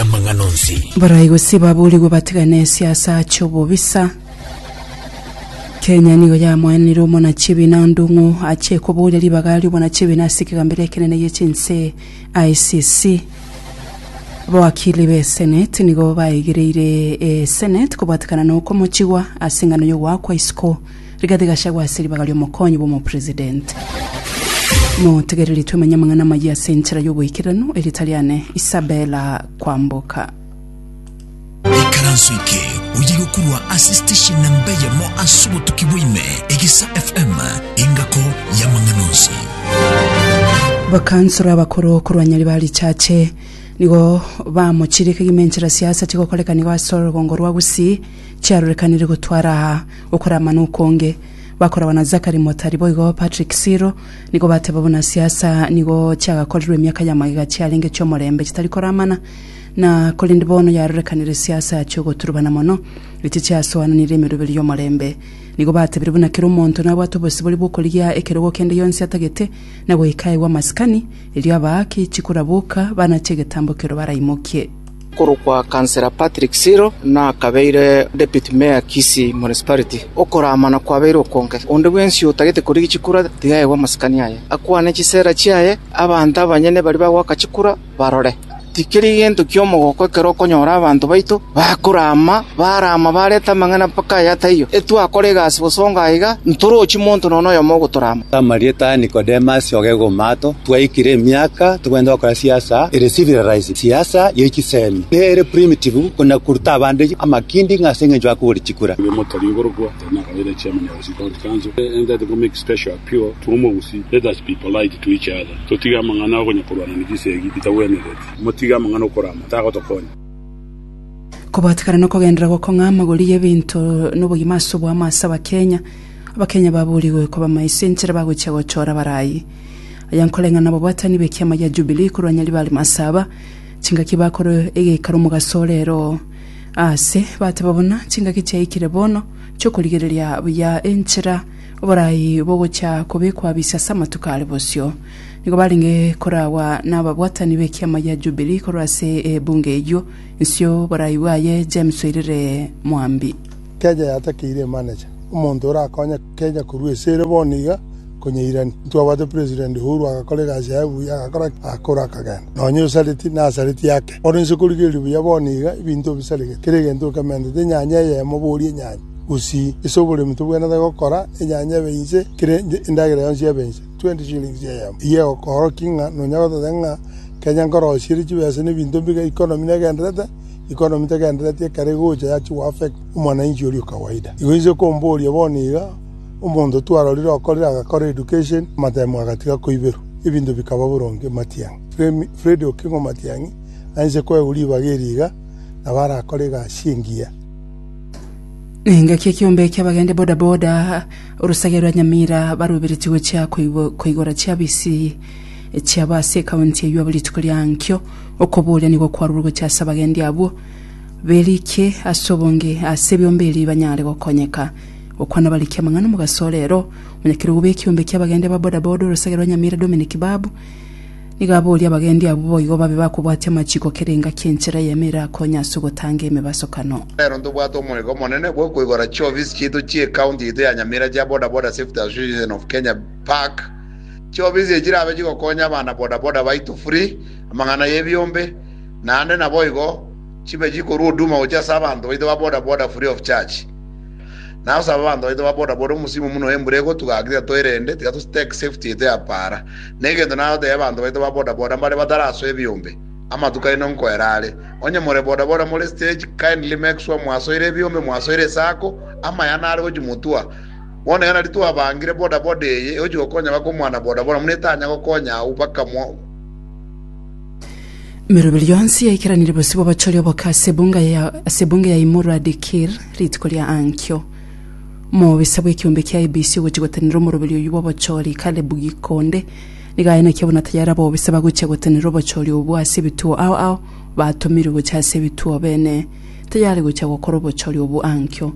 amang'ana onsi. Barai gose baborigwe batigane esiasa ache obobisa. Kenya nigo yamoenanire omonachibi na ondong'u ache koboria ribaga riobonachibi na ase ekegambero ekenene gie chinse ICC. Abawakili be Senate nigo baigereire e Senate kobwatekana na okomochigwa ase engano yogoakwa isiko Rigathi Gachagua ase ribaga ri'omokonyi bw'omopresidenti. Motegereri twemenye amang'ana amayia ase enchera y'oboikeranu, Erieta riane Isabella Kwamboka. Ikaranso eke oye gokurwa ase station namba eyemo ase obotuki bwaime, Egisa FM, engako y'amang'ana onsi. Bakansoro abakoro korwa Nyaribari Chache nigo bamochire kegima enchera siasa chigokoreka nigo ase orogongo rwa Gusii chiarorekanire gotwara Okoramana okonge, bakoragwa na Zachary Motari boigo Patrick Siro, nigo bateba buna siasa nigo chiagakorirwe emiaka ya magega chiarenge chi'omorembe chitari koramana, na korende bono yarorekanire siasa chi'ogoturubana mono, echi chiasoananire emeroberio y'omorembe. Nigo batebire buna kera omonto nabwate obosibore bw'okorigia ekerogo kende gionsi atagete, na goikaegwa amasikani, erio abaaki chikuraboka banachie egetambo ekero baraimokie. okorokwa Councillor Patrick Siro nakabeire Deputy Mayor Kisii Municipality. Okoramana kwabeire okonge, onde bwensi otagete korigia chikura tiga aegwe amasikani aye, akwane chisera chiaye, abanto abanyene baria bagoaka chikura barore. Tikeri gento ki'omogoko ekero okonyora abanto baito bakorama, barama barete amang'ana mpaka aya taiyo. Etwakora egasi bosongo aiga, ntorochi monto nonya noyomo ogotorama. Amarieta Nicodemus ogegwa omoato, twaikire emiaka togenda gokora siasa ere civilized. Siasa ye chisemi nere primitive kona koruta abande amakindi ng'a ase engencho akogora chikura. Kobatekana nokogenderera gokong'a amagori y'ebinto nobogima ase oboamo ase Abakenya. Abakenya baburigwe koba maiso enchera bagochia gochora barayi. Aya nkoreng'ana nababwatani b'ekiama gia Jubilii korwa nyaribare are masaba, chingaki bakorwa egeikaro omogaso ore ero aase, bateba buna chingaki chiaikire bono chi'okorigereria buya enchera oborai bogochia kobekwa bisa ase amatuko are bosio. Nigo barenge koragwa nababwatani b'ekiama gia Jubilii korwa ase ebunge eyio, nsio borai bwaye James Oirere Mwambi. Keeja yatakeire Emanecha, omonto orakonye. Kenya korwa ase ere bono iga konyairani. Intwabwate President Uhuru agakora egasi yaye buya, agakora ki? Agakora akagenda nonya Osareti na Nasareti yake. Ore inse korigereria buya bono iga ebinto obisaregete, kera egento okementete enyanya eyemo boria enyanya gusii. Ase oboremi tobwenerete gokora enyanya ebe inse, kera endagera yonsi ebe inse, 20 shillings eyemo. Eyio egokoorokia ng'a nonya gototeba ng'a Kenya nkorosia ere chibesa na ebinto mbiga economy negenderete, economy tegendereti ekero egocha yachia goaffect. omwananchi oria o kawaida. Igo inche nkomboria bono iga, omonto twarorire okorire agakora education, amatime agatiga koiberwa, ebinto bikaba boronge matiang'i. Fremi, Freddy Okingo Matiang'i, Anche koegwa ribaga eri iga, nabo arakore egasi engiya. Engaki ekiombe ekia abagende boda boda orosage rwa Nyamira barubereti gochia koigora chiabisi chiabo ase ekaunti eyio abo rituko riankio okoboria nigo kwarurwe gochia ase abagendi abwo. Berikie ase obonge ase biomberi banyare gokonyeka. Gokwana barikie amang'ana omogaso orero. Omonyakerogo bw'ekiombe ki'abagendi aba boda boda orosegere rwa Nyamira Dominic Babu nigo aboria abagendi abwo boigo babe bakobwatia amachiko kerenga ki'enchera y'emo erakonye ase ogotanga emebasokano. Nero ntobwate omoika omonene bw'okoigora chiofisi chiaito chi'ecounty yaito ya Nyamira chia Boda Boda Safety Association of Kenya, BASAC. Chiofisi echi chirabe chigokonya abana boda boda baito free, amang'ana y'ebiombe, naende naboigo, Chibe chikorwa huduma gochia ase abanto baito ba boda boda free of charge. Naye osabe abanto baito ba boda boda omosimo buna oyo embura egotugaka tiga toirende, tiga to stake safety yaito ya paara. Na egento nagotebia abanto baito ba boda boda mbare batarasoa ebiombe, amatuko aino nkoera are. Onye more boda boda more stage, kindly make sure mwasoire ebiombe, mwasoire esako, amaya nare gochia motua. Bono iga nario twabangire boda boda eye egochia gokonya baka omwana boda boda buna etanya gokonya abwo baka mwa. Emeroberio yonsi yaikeranire bosio bw'abachori oboke ase ebunga ya ase ebunga ya Imurwa Dikir rituko ria ankio. Mobisa bw'ekiombe kia ABC ogochia gotenenera omoroberio oyio bw'obochori Kalebu Gikonde nigo aye naki abona tayari abobisa bagochia gotenenera obochori obwo ase ebituo ao ao batomirwe gochia ase ebituo bene tayari gochia gokora obochori obwo ankio.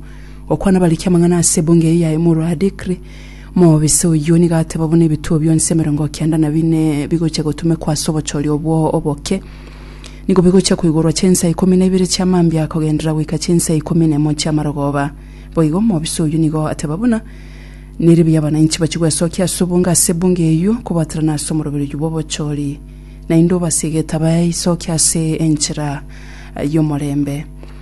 Gokwana abariki amang'ana ase ebunga eyio ya Imurwa Dikri Mobisa oyio nigo ateba buna ebituo bionsi emerongo kenda na bine bigochia gotumekwa ase obochori obwo oboke, nigo bigochia koigorwa chinsa ikomi na ibere chia mambia kogenderera goika chinsa ikomi na emo chia marogoba. Boigo mobisa oyio nigo ateba buna nere buya abananchi bachie gwesokia ase obonge ase ebunge eyio kobaterana ase omoroberi oyio bw'obochori, naende obase egetabo aisokie ase enchera y'omorembe.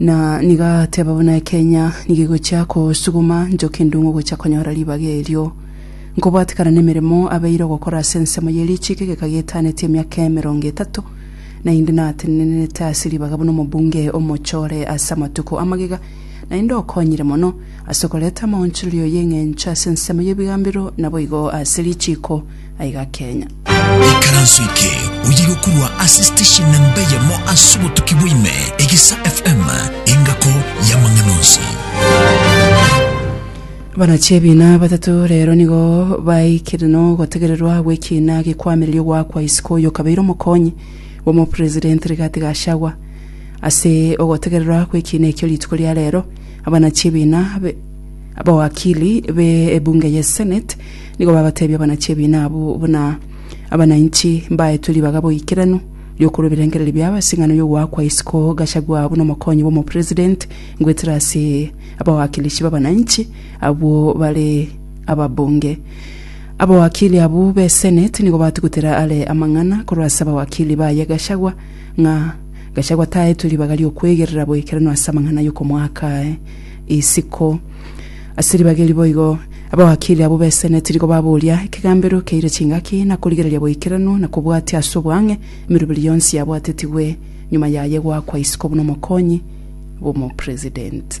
Na nigo agateba buna ekenya nigo egochia kosuguma nchoki endungu gochia konyora ribaga erio. Nkobwatekana nemeremo abeire ogokora ase ensemo ye richiko egeka gietaneti emiaka emerongo etato, naende natenenenete ase ribaga buna omobunge omochore ase amatuko amagega, naende okonyire mono ase okoreta amaonchorerio y'eng'encho ase ensemo y'ebigambero naboigo ase richiko. aiga Kenya. Ekaranso eke oye gokorwa ase station namba eyemo ase obotuki bwa ime, Egisa FM, engako y'amang'ana onsi. Abanachiebina batato rero nigo baikire nogotegererwa gw'ekiina gekwamireria ogoakwa isiko oyo okabeire omokonyi bw'omopresident Rigathi Gachagua. Ase ogotegererwa gw'ekiina ekio rituko ria rero, abanachiebina be Abawakili be ebunge ye Senate nigo babatebia abanachiebina abwo buna abanainchi mbaetwe ribaga boikeranu riokorwa ebirengererio biabo ase eng'ano y'ogoakwa isiko Gachagua buna omokonyi bw'omopresident goetera ase abawakilishi b'abanainchi abwo bare ababunge. Abawakili abwo be Senate nigo batugutera are amang'ana korwa ase abawakili baye Gachagua ng'a Gachagua taetwe ribaga ri'okwegerera boikeranu ase amang'ana y'okomoaka aye. isiko. Ase ribaga eri boigo abawakili abwo b'esene tirigo baboria ekegambero keire chingaki na korigereria boikeranu na kobwatia ase oboang'e emeroberi yonsi yabwatetigwe nyuma yaye goakwa isiko buna omokonyi bw'omopresident.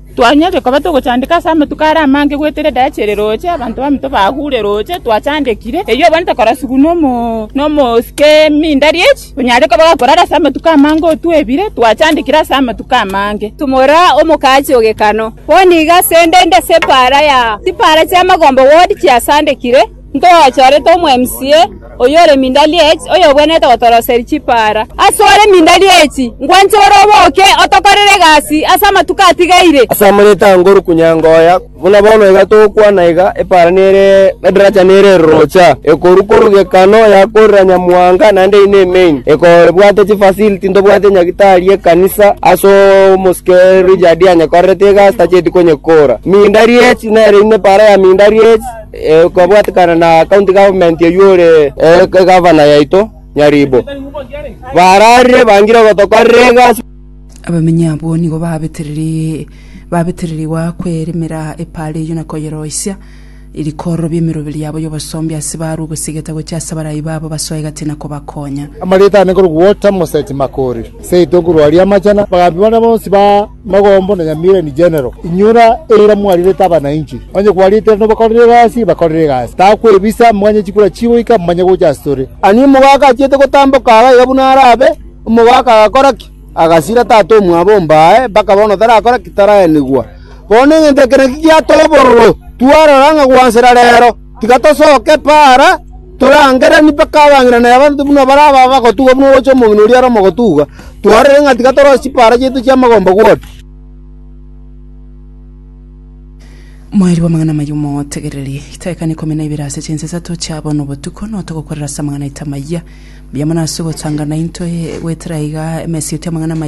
Twanyorire koba togochandeka ase amatuko are amange goetera edachi ere roche, abanto baminto bagure roche twachandekire, eyio abana tokorasugwa nomosike emindari echi, onyare koba gakorara ase amatuko amange otwebire, twachandekire ase amatuko amange. Tumora omokachi o Gekano. Bono iga asende inde ase epaara ya chipaara chi'amagombe ward chiasandekire. Ntogachorete omwemsie oyore Mindalieti, oyobwenerete gotoroseria chipaara. Asore Mindalieti, nkwanche ore oboke otokorere egasi ase amatuko atigaire. Ase amareeta a Ngoru Kunyangoya, buna bono iga togokwana iga, epaara nere edaracha nere erorocha, ekoru koru gekano yakorera Nyamuhanga naende eye nemeini, ekobwate chifacility ntobwate nyagitari y'ekanisa ase omosike Richard anyekorerete egasi tacheti konyekora. Mindalieti nere inde epaara ya Mindalieti. kobwatekana na county government oyio ore egavana yaito Nyaribo, bararire bangire gotokorera egasi. Abamenyi abwo nigo babetereri- babetererigwa kweremera epaara eyio na koyeroisia, rikororobia emeroberi yabo y'obosombi ase barwe ogosigeta gochia ase abarai babo basoe egati na kobakonya. Amarita ane korwa Walter Moseti Makori, Seito korwa Rwariamachana, bagaambia baria bonsi ba. Mogombo na nyamira in general, inyora eira mwarirete abanainchi, onye kwariete ere nobakorere egasi, bakorere egasi, takwebisa, monywe chikura chigoika, momanye gocha asore. Ani omogaka achiete gotamboka aa gaiga buna arabe, omogaka agakora ki? Agasira tata omwabo omba aye, mpaka bono tarakora ki? Taraenigwa. Bono neng'encho eke nakio giatoborwe, twarora ng'a gwansera reero. Tiga tosoke Paara, torangeranie mpaka abang'ina na abanto buna bare aba bagotugwa buna oroche omong'ina oria Roma ogotugwa. Twarorire ng'a tiga toroche chipaara chiaito chi'amagomba gwoti.” Mwaerigwa amang'ana amaya omotegererie. Itaekana ikomi na ibere ase chinsa isato chia bono botuko noe togokorera ase amang'ana aito amaya. Mbuya mono ase ogotanga naintwe goetera aiga emesa eito y'amang'ana amaya.